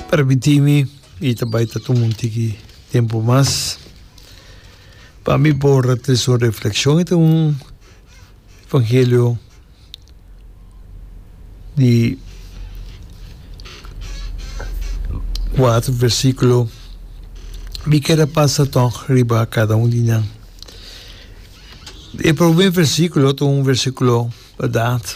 Permití mi, i ta bai ta tuma un tiki tempu mas, pa mi por a trese un reflekshon. E ta un evangelio di kuater versikulo. Mi kier a pasa tòg riba kada un di nan. E promé versíkulo ta un versíkulo badat.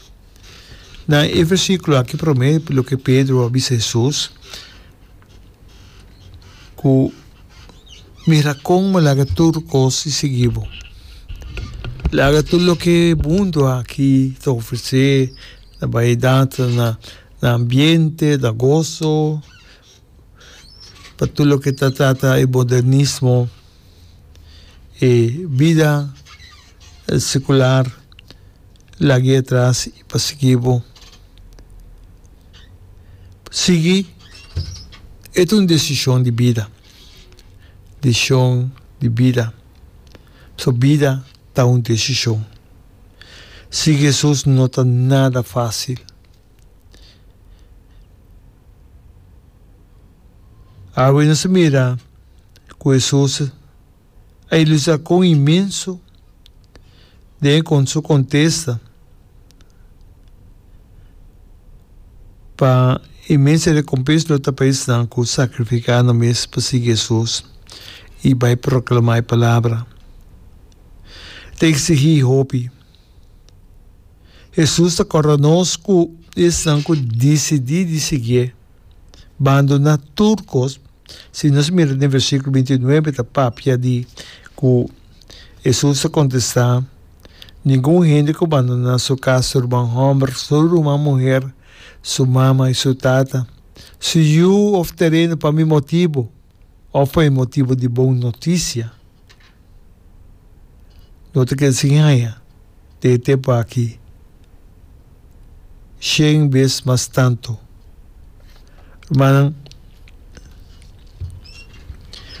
Na e versíkulo akí promé loke Pedro a bisa Hesus ku, Mira kon bo laga tur kos i sigui bo. Laga tur loke e mundu akí ta ofresé, na bayidat, na na ambiente, na goso, pa tur loke ta trata e modernismo, e bida sekular. Lag'é atras i persiguí bo. Sigui e ta un desishon di bida, deshishon di bida, pasobra bida ta un deshishon. Sigui Hesus no ta nada fásil. Awe nos a mira ku Hesus. A e lusa con inmenso den e con su contesta pa e mester recompens lo ta pa esnan cu sacrifica nan mes pa sigui Jesus y bay proclama e palabra. Ta exigi hopi. Jesus ta corda nos cu esnan cu dicidi di sigie. bando na tur kos. Si nos mira den versikulo binti nuebe ta papia di ku Hesus a kontestá, Ningun hende ku bandoná su kas, su ruman hòmber, su ruman muher, su mama i su tata, su yu òf tereno pa mi motibu òf pa e motibu di bon notisia, Lo ta keda sin haña te e tempu aki shen bes mas tantu. Rumannan,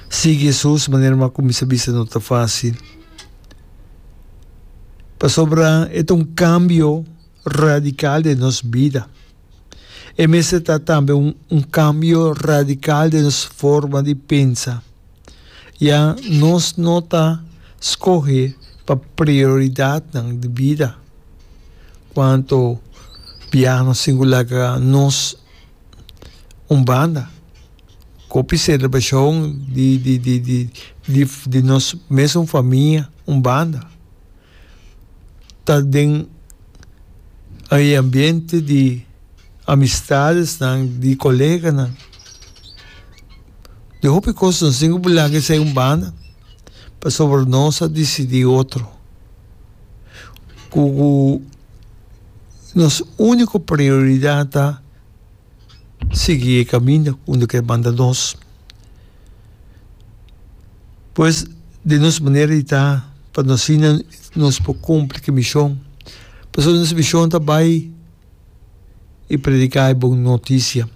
sigui Hesus manera bo a kuminsá bisa no ta fásil. Pasobra e ta un kambio radikal den nos bida. E mester ta tambe un kambio radikal den nos forma di pensa. Ya nos no ta skohe pa prioridatnan di bida. Kuantu biahanan singular ta nos un banda, kopi selebrashon di di di di di di nos mesun famia un banda, ta den e ambiente di amistadesnan, di koleganan. di hopi cos nos tin cu bulanga esai un banda pasobra nos a dicidi otro cu nos unico prioridad ta sigui e caminda cu no ker manda nos pues den nos manera di ta pa nos asina nos por cumpli ki mision pasobra nos mision ta bay. i prediká e bon notisia.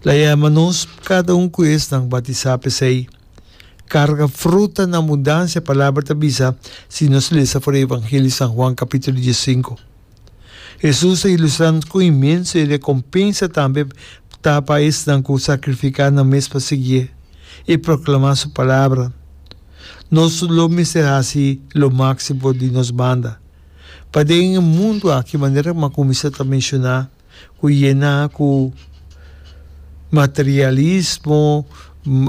Laema nos kada un ku esnan batisá p'esei. Karga fruta na abundansia Palabra ta bisa si nos lesa for e Evangelio di San Juan kapítulo dies sinku. Hesus ta ilustrá nos ku inmenso e rekompensa tambe ta pa esnan ku sakrifiká nan mes pa siguié i proklamá su Palabra. Nos lo mester hasi lo máksimo di nos banda. Paden e mundu aki, manera ku Macuminsta ta menshoná, ku yená ku materialismo,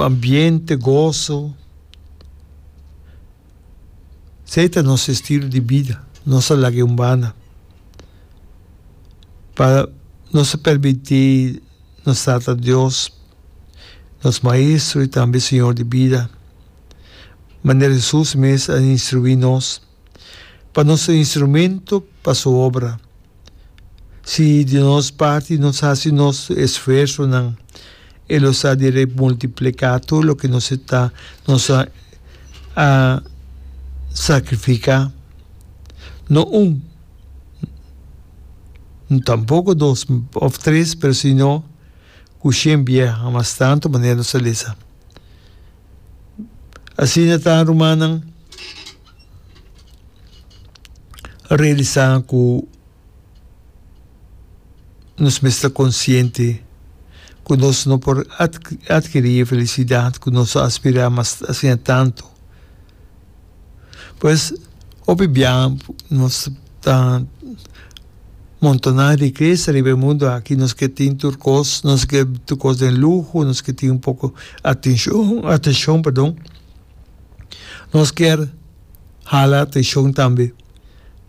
ambiente, goso. Esei ta nos estilo di bida. Nos a laga e humbana pa nos a permití nos Tata Dios, nos Maestro i tambe Señor di bida, manera Hesus mes a instruí nos, pa nos ta instrumento pa su obra. Si di nos parti nos hasi nos esfuersonan, e lo sa di rei multiplicá tur loke nos esta nos a a sacrificá. No un, tampoco dos òf tres, pero sino ku shen biaha, mas tantu manera nos a lesa. Asina ta rumannan realisa ku nos mester ta konsiente ku nos no por adkirí e felisidat ku nos ta aspirá asina tantu. Pues hopi biaha nos ta montona riquesa riba e mundo aki, nos ke tin tur kos, nos ke tur kos den luho, nos ke tin un poko atenshon, atenshon, pardon, nos kier hala atenshon tambe,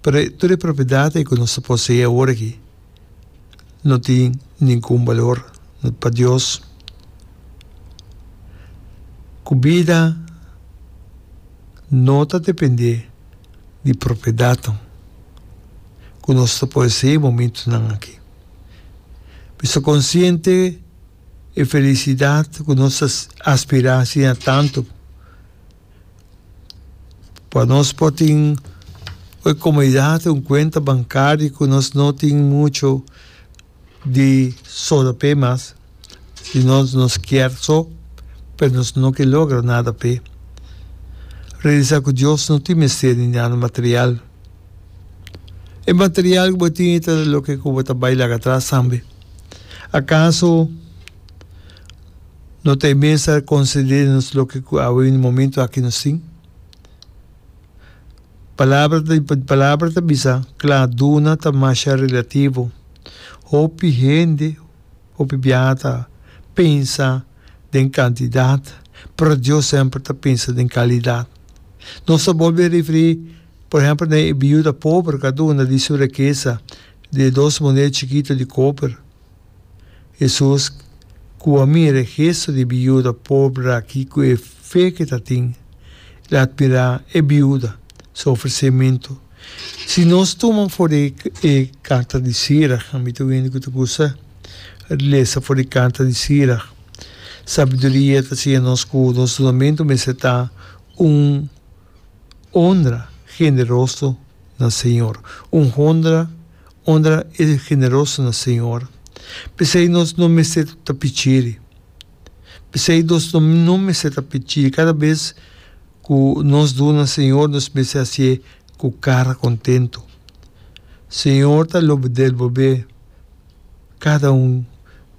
pero tur e propiedadnan ku nos ta posee awor aki. no tin ningun balor pa Dios, ku bida no ta dependé di propiedatnan ku nos ta posesé momentunan aki. Mi ta konsiente e felisidat ku nos ta aspirá asina tantu pa nos por tin un comodidad, un cuenta bancario cu nos no tin mucho di solo p'e mas, si nos, nos kier so, pero nos no ke logra nada p'e. Realisa cu Dios no tin mester di nada material. E material cu bo tin i ta loke cu bo ta bay laga atras tambe. Acaso. No ta e mester a conceder nos loke cu awe un momento aki nos tin. Palabra ta di, Palabra ta bisa cla, duna ta masha relativo. Hopi hende, hopi biaha ta pensa den cantidad, pero Dios semper ta pensa den calidad. Nos ta bolbe referi, por ehempel, na e biuda pober cu a duna di su rekesa, di e dos moneda chikito di coper. Hesus, ku a mira e gesto di e biuda pober aki ku e fe ku e ta tin, el a admirá e biuda su ofresementu. Si nos tuma for di e karta di Sirach, ami ta oí hende ku ta kusa lesa for di karta di Sirach. Sabiduria ta siña nos ku nos dunamentu mester ta un onra generoso. na Señor, un hondra, hondra e generoso na Señor. P'esei nos no mester ta pichiri. P'esei nos no mester ta pichiri. Kada bes ku nos duna Señor, nos mester hasié ku kara kontentu. Señor ta lo bedel bo be. Cada un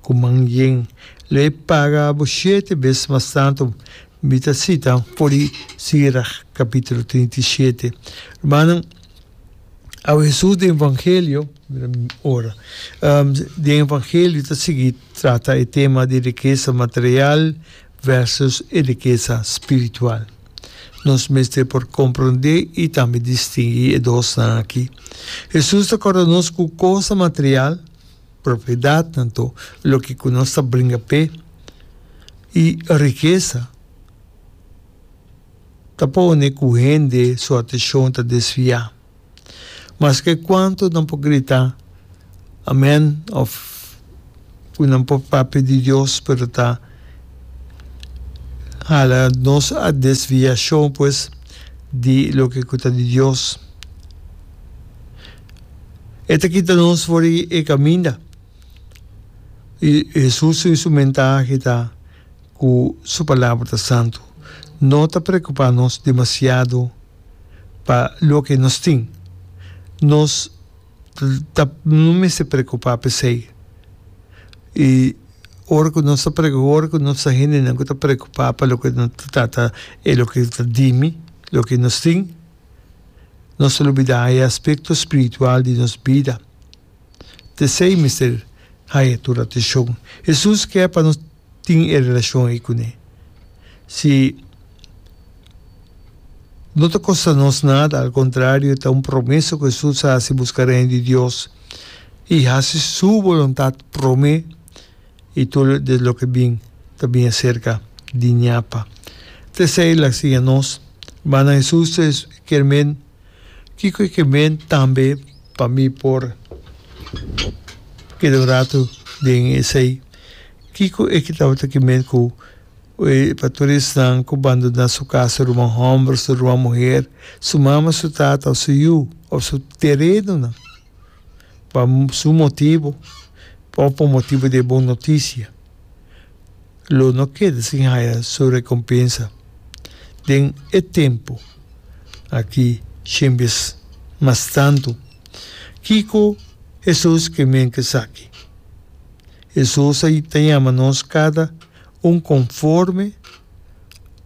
cu man yen lo e paga abo shete bes mas tanto. Mi ta cita for di Sirach capitulo trinta y shete. Rumannan, abo Hesus den Evangelio, mira mi ora, den Evangelio ta sigui trata e tema di rikesa material, Versus e rikesa spiritual. Nos mester por komprondé i tambe distingui e dosnan akí. Hesus ta kòrda nos ku kosnan material, propiedatnan to, loke ku nos ta bringa p'e, i rikesa, ta pone ku hende su ateshon ta desviá. Maske kuantu nan por grita Amén òf ku nan por papia di Dios pero ta hala nos a desviashon pues di loke ku ta di Dios. E ta kita nos for di e kaminda. I Hesus su instrumentahe ta ku su palabra ta santu. No ta preokupá nos demasiado. pa loke nos tin. Nos ta no mester preokupá p'esei. I ora ku nos ta preokupá, ora ku nos ta hendenan ku ta preokupá pa loke nan ta trata e loke ta dimi, loke nos tin, nos ta lubidá e aspekto spiritual di nos bida. P'esei mester haña tur atensho. Hesus ke pa nos. tin e relacion ei cune. Si no ta costa nos nada, al contrario ta un promesa cu Jesus a haci busca Reino di Dios y haci su boluntad prome y tur den loke bin ta bin acerca di Ñapa. Ta esey el a siña nos, Rmannan Jesus ta esper men. Kiko e ke men tambe pa mi por keda un ratu den esei? Kiko e ke tabata ki men ku e pastoresnan ku bandoná su kas, su ruman hòmber, su ruman muher, su mama, su tata òf su yu òf su terenonan pa su motibu òf pa motibu di e bon notisia? lo no keda sin haya su rekompensa. Den e tempu aki shen bes mas tantu. Kiko Hesus ke menti esaki? Hesus a ta yama nos kada un konforme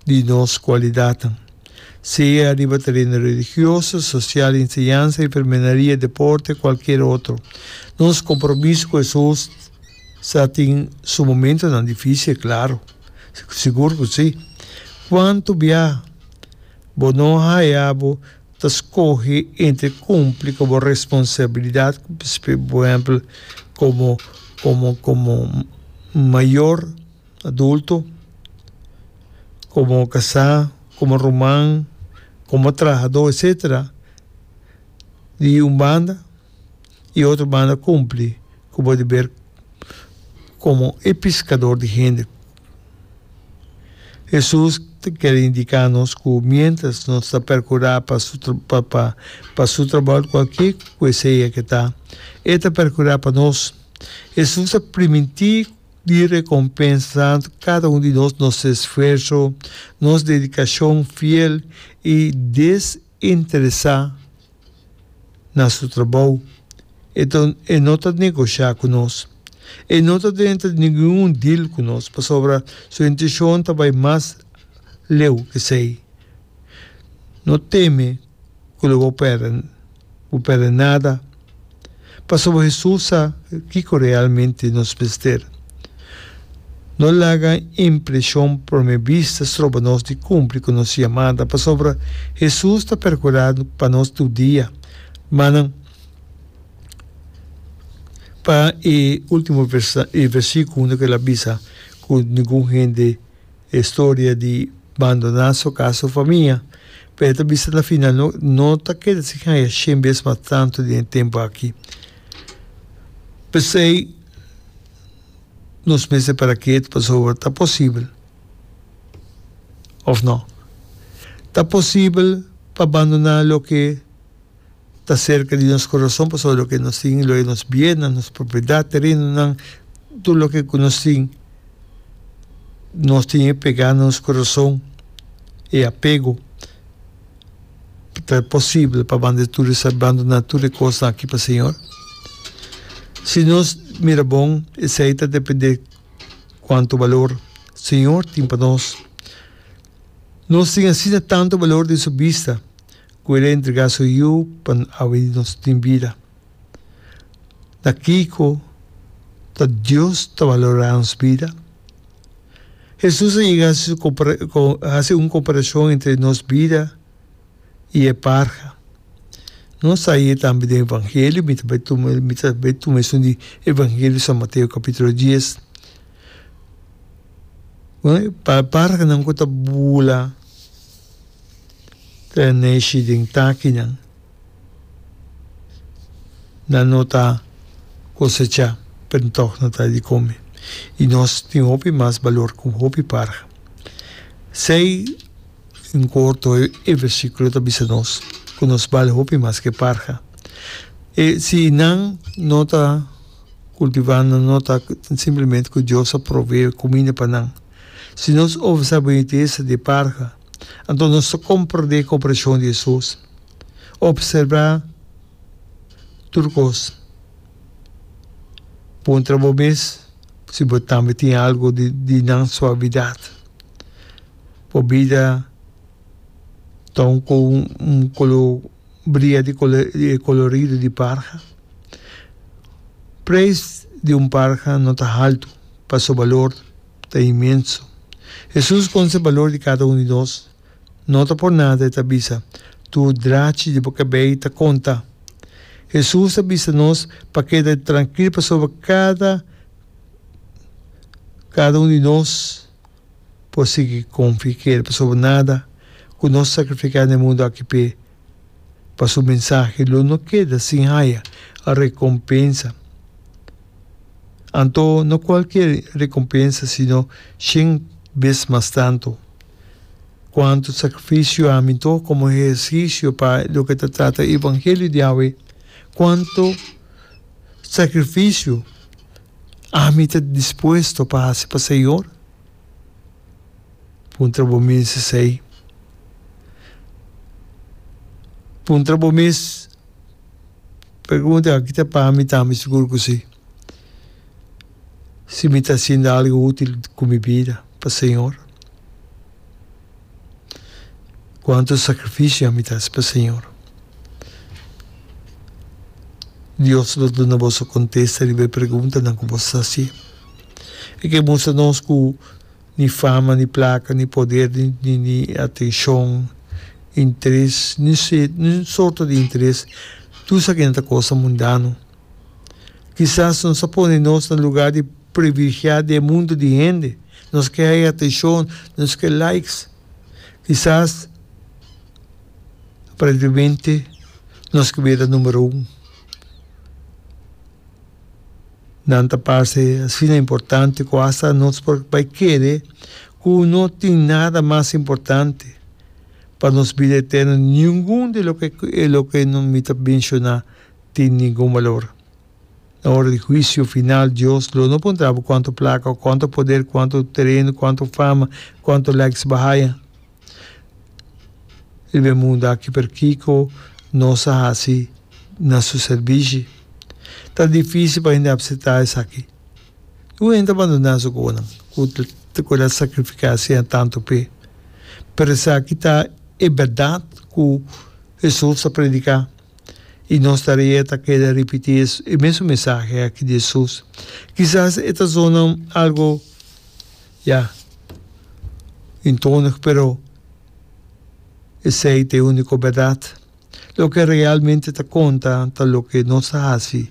di nos kualidatnan, sea riba tereno religioso, sosial, enseñansa, enfermenaria, deporte, kualkier otro. Nos kompromiso ku Hesus Sa tin su momentonan difisil, klaru. Sigur ku si. Kuantu biaha bo no haya bo ta skohe entre kumpli ku bo responsabilidat, por ehèmpel, komo, komo, komo mayor, adulto, komo kasá, komo ruman, komo trahadó, etsetera, di un banda, i otro banda kumpli. Ku bo di ber komo e piskador di hende. Hesus ta kere indiká nos ku miéntras nos ta perkurá pa su pa pa su trabou kualke ku e sea ke ta, e ta perkurá pa nos. Hesus a primintí di rekompensa kada un di nos nos esfuerso, nos dedikashon fiel i desinteresá. na su trabou. E ta e no ta negosha ku nos. E no ta den ta ningun un deal ku nos pasobra su intishon ta bai mas leu ku esei. No teme ku lo bo pèrdè bo pèrdè nada. Pasobra Hesus sa kiko realmente nos mester. No laga impreshon prome bista stroba nos di kumpli ku nos yamada, pasobra Hesus ta perkurá pa nos tur dia. Ma nan, pa e último versíkulo no kel a bisa ku ningun hende. E historia di bandoná su kas, su famia, pa e ta bisa na final no no ta keda sin haya shen bes mas tantu den e tempu aki. P'esei nos mester para kiet pasobra ta posibel, òf no? Ta posibel pa bandoná loke. ta serka di nos kurason pasobra loke nos tin loke nos biennan, nos propiedad, terenonan, tur loke ku nos tin nos tin e pegá na nos kurason, e apego ta posibel pa banda tur esei, banduná tur e kosnan aki pa Señor. Si nos mira bon esei ta dependé kuantu balor Señor tin pa nos. Nos tin asina tantu balor den su bista. ku el a entregá su Yu pa awe di nos tin bida. Na kiko ta Dios ta valorá nos bida? Hesus a yega hasi un komparashon entre nos bida i e parha. Nos ta haya tambe den Evangelio, mi ta bai tuma mi ta bai tuma esun di Evangelio San Mateo kapitulo dies. Parhanan ku ta bula. Kren neshi den takinan nan no ta kosechá, pero tòg nan ta di kome, i nos tin hopi mas balor ku hopi parha. Esei en korto e versíkulo ta bisa nos ku nos bal hopi mas ke parha. E si nan no ta kultivá, nan no ta simplemente ku Dios a provee kuminda pa nan. Si nos obra sa benitesa di e parha, Anto nos ta komprendé komparashon di Hesus, Opserbá tur kos. Puntra bo mes si bo tambe tin algu di nan suavidat. Bo bida ta un kolo bria di kolorido di parha. Preis di un parha no ta haltu pa su balor. ta inmenso. Hesus conse balor di cada un di nos. No ta por nada e ta bisa, Tu drachi di bo cabey ta conta. Hesus ta bisa nos pa keda trankil pasobra cada cada un di nos por sigui confia i kere pasobra nada cu nos sacrifica n'e mundo aki p'e. pa su mensahe lo no keda sin haya recompensa. Anto no cualkier recompensa sino shen bes mas tanto. Cuanto sacrificio a minto como ehercicio pa loke ta trata evangelio di Yahweh, cuanto sacrificio ami ta dispuesto pa haci pa Señor? Puntra bo mes esei. Puntra bo mes, pregunta, aki ta pa mi tambe? Sigur ku si. Si mi ta hasinda algu útil ku mi bida pa señor. Cuanto sacrificio ami ta haci pa Señor. Dios lo duna boso contesta riba e preguntanan cu boso ta haci. E ke mustra nos cu ni fama, ni placa, ni poder, ni atencion, interes, ni un sorto di interes, tur sa kinan ta cosa mundano. Kisas nos a pone nos na lugá di privilegiá di e mundu di hende. Nos ke haya atenshon, nos ke likes. Kisas, aparentemente, nos ke bira numero un. Nan ta parse asina importante ku hasta nos por bai kere ku no tin nada mas importante pa nos bida eterno di ningun di loke di loke mi ta menshoná. tin ningun balor. Na ora di huisio final Dios lo no puntra bo kuantu plaka o kuantu poder, kuantu tereno, kuantu fama, kuantu likes bo haya riba e mundu aki pero kiko nos a hasi na su servishi. Ta dificil pa hende apsepta esaki. Ningun hende ta bandona su kobonan ku ku el a sakrifika asean tantu pe. Pero esaki ta e berdad ku Hesus a predika. I nos tarea ta keda ripití e mesun mesahe aki di Jesus. Kisas e ta sonan algu, ya, intonig, pero esei ta e úniko bèrdat. Loke realmente ta konta ta loke nos ta hasi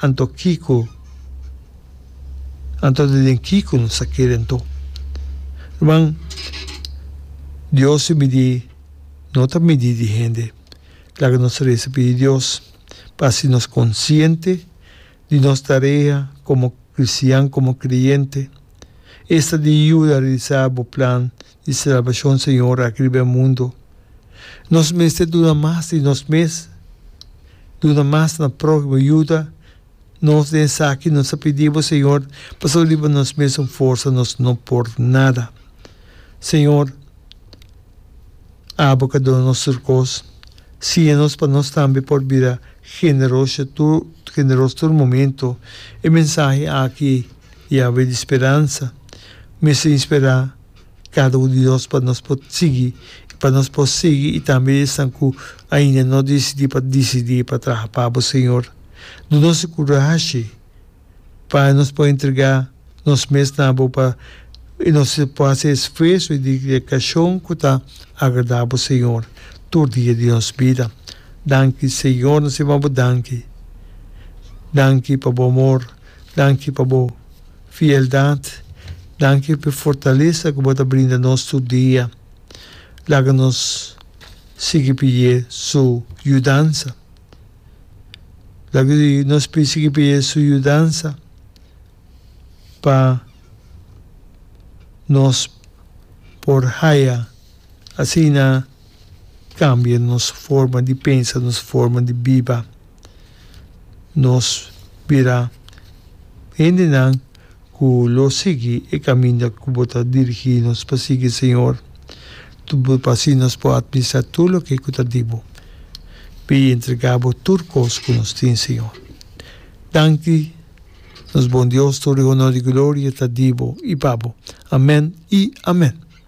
Anto kiko anto de den kiko nos ta kere anto? Ruman, Dios su midí no ta midí di hende. Laga nos resa pidi Dios pa hasi nos konsiente di nos tarea komo kristian, komo kreyente. Esta di yuda realisá bo plan. di salbashon Señor aki riba e mundo, nos mester duna mas di nos mes, duna mas na próhimo, yuda nos den esaki. Nos ta pidi bo Señor, pasobra riba nos mes un forsa nos no por nada. Señor, abo ka duna nos tur kos, siña nos pa nos tambe por bira generoso tur generoso tur momento. E mensahe aki di Yahweh di speransa mester inspirá. cada un di nos pa nos por sigui y pa nos por sigui y tambe esnan cu ainda no dicidi pa dicidi pa traha pa bo Señor. Do nos e curashi pa nos por entrega nos mes na bo pa y nos por haci e esfuerso y dedicacion cu ta agrada bo Señor tur dia di nos bida. Danki Señor nos a yama bo danki. Danki pa bo amor. Danki pa bo Fieldad, danki p'e fortalesa ku bo ta brinda nos tur dia. Laga nos sigui pidié Su yudansa. Laga nos sigui pidié Su yudansa pa nos por haya asina. Cambia nos forma di pensa, nos forma di biba. Nos bira hendenan cu lo sigui e caminda cu bo ta dirigi nos pa sigui, Señor. Pa así nos por administra tur loke cu ta di bo. Bai entrega bo tur cos cu nos tin, Señor. Danki, nos Bon Dios, tur e honor y gloria ta di bo y pa bo. Amen y amen.